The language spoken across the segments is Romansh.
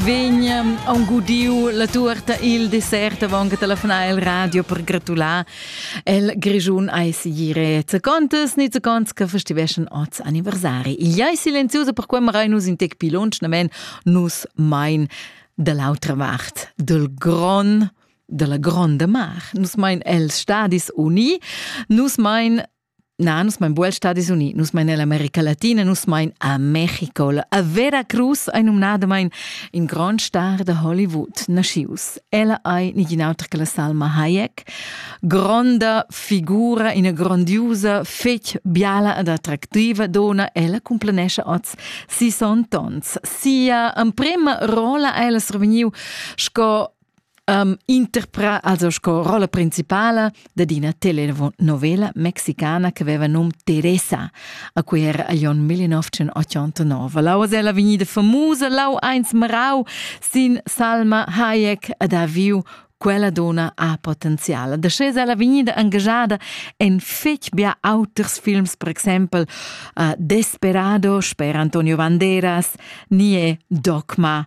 Vegn ehm, aunc gudiu la tuorta il dessert avon che telefonar il radio per gratular el Grischun ai sigire zacontes ni zaconts che festiveschen oz anniversari. Igl ei silenziuso per quei marai nus in tec pi lunsch, namen nus mein dall'autra vart del Gron della gronda mar. Nus mein els stadis uni, nus mein Na, nus mein bual Stadis Uniti, nus mein nell'America Latina, nus mein a Mexico. La vera cruz ei numnadamein in grand star da Hollywood naschius. Ella ei nigin auter che la Salma Hayek, gronda figura, ina grandiosa, fetg biala ed attractiva dona. Ella cumplenescha oz 60 ons. Sia emprema rola ha ella survegniu sco um, interprà also sco rolla principala dad ina telenovela mexicana che aveva num Teresa, a cui era agl onn 1989. Lau es ella vegnida famusa, lau eins marau sin Salma Hayek ad ha viu quella dona ha potenzial. Da sche ella vegnida engagada en fetg bia auters films, per exempel uh, Desperado, sper Antonio Banderas, Nie Dogma,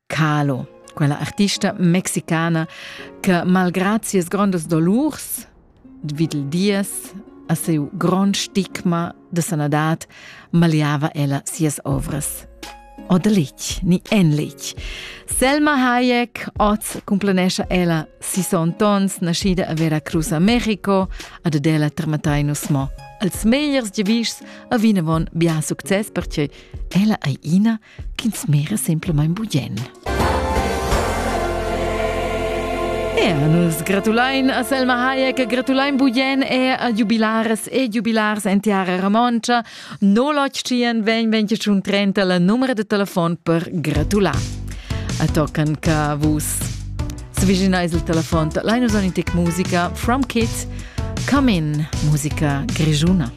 Carlo, quella artista mexicana che malgrad sias grondas dolurs vid il dies a seu grond stigma de sanadad maliava ella sias ovras. O de lich, ni en lich. Selma Hayek, oz complanescha ella sison tons naschida a Veracruz a Mexico ad adela tramatai nus mo. Als megliers giavischs a vinavon bia success perche ella ei ina ch'ins mera semplamain bugen. Ja, nus gratulain a Selma Hayek, gratulain bugen e a jubilares e jubilars en tiara romontscha. No lotschien vegn 2030 la numero de telefon per gratular. A tocan ca vus sviginais il telefon Linus Onitic musica from Kids, come in musica grigiuna.